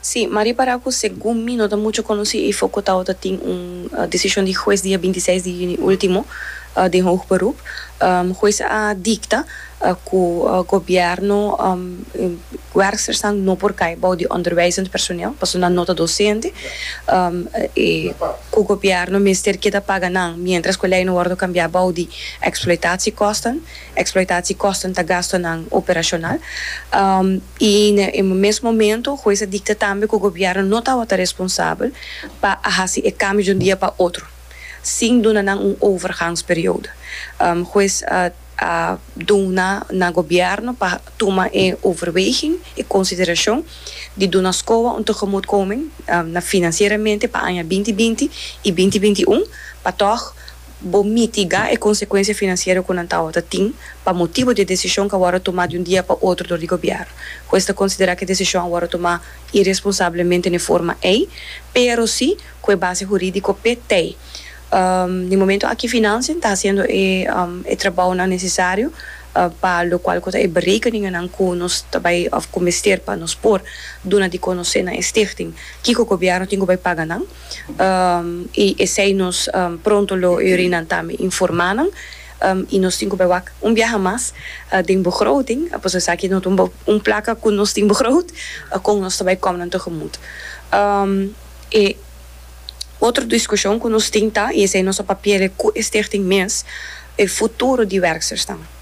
Sí, ma ripará ku segun mi no ta muchu konosí ei fokot awoda tin un desishon di hues dia binti seis di yüni último den hoog beroep. Hues a dikta ku gobièrnu werkstersnan no por kai bou di onderwijzend personeel pasobra nan no ta dosente i ku gobièrnu mester keda paga nan miéntras ku e lei no wòrdu kambiá bou di eksploitatiekosten. Eksploitatiekòsten ta gastonan operashonal. I na e mes momento hues a dikta tambe ku gobièrnu no tabata responsabel pa a hasi e kambio di un dia pa otro sin duna nan un overgangsperiodo. Hues a duna na gobièrnu pa tuma e overweging, e konsiderashon di duna Scoa un tegemoetkoming na finansieramente pa aña binti binti i binti binti un pa tòg bo mitigá e konsekuensia finansiero ku nan tabata tin pa motibu di e desishon ku a wòrdu tumá di un dia pa otro dor di gobièrnu, ku esta konsiderá ku e desishon a wòrdu tumá iresponsablemente n'e forma ei, pero si ku e base hurídiko pt. N'e momentu aki Financiën ta hasiendo e trabounan nesesario pa lokual ku ta e berekeninganan ku nos ta bai òf ku mester pa nos por duna di konosé na e stichting kiko gobièrnu tin ku bai paga nan. i esei nos pronto lo yorinan tambe informá nan i nos tin ku bai wak un biaha mas den begroting pues esaki no ta un un plaka ku nos tin begroot kon nos ta bai kòm nan tegemut e otro diskushon ku nos tin ta i esei nos a papi'e ku e stichting mes e futuro di werkstersnan.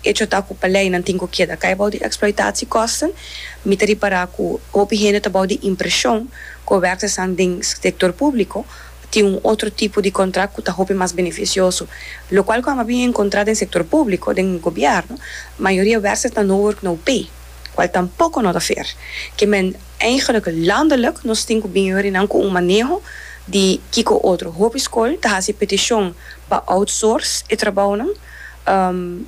Echo ta cu paleinan tin cu keda cay bou di exploitatiekosten. Mi ta ripara cu hopi hende ta bou di impresion cu e werkersan den sector publico tin un otro tipo di contract cu ta hopi mas beneficioso. Locual cuando a bin encontra den sector publico, den gobierno, mayoria werkersan no work no pay, cual tampoco no ta fair. Ke men eigenlijk landelijk nos tin cu bin yorinan cu un maneho di kico otro. Hopi school ta haci peticion pa outsource e trabounan.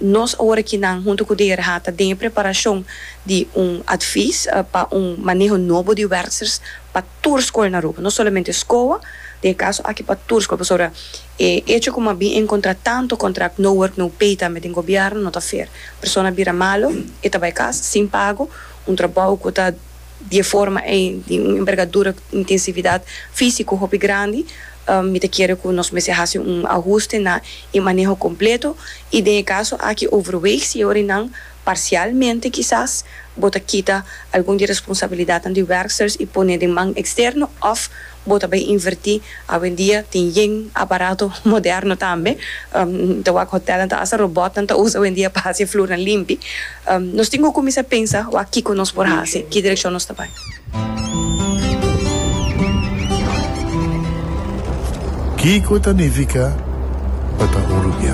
Nos ora aki nan hunto ku de RHA ta den e preparashon di un advis pa un maneho nobo di werksers pa tur skol na Aruba, no solamente SCOA, den e kaso aki pa tur skol, pasobra e echo ku mabien e enkontrá tantu kontrakt no work no pay tambe den gobièrnu no ta fair. Persona bira malo e ta bai kas sin pago, un trabou ku ta. Di e forma ei, di un envergadura cu intensividad físico hopi grandi, mi ta kere cu nos mester haci un ahuste na e maneho completo y den e caso aki overweeg si e orinan parcialmente kisas bo ta kita algun di e responsabilidadnan di werksters y pone den man externo of Bo ta bay invertí. Awendia tin yen aparato moderno tambe. Ta wak hotelnan ta hasta robotnan ta usa awendia pa hasi e flurnan limpi. Nos tin ku kuminsá pensa wak kiko nos por hasi, ki direkshon nos ta bai. Kiko ta nifiká pa ta urugiá?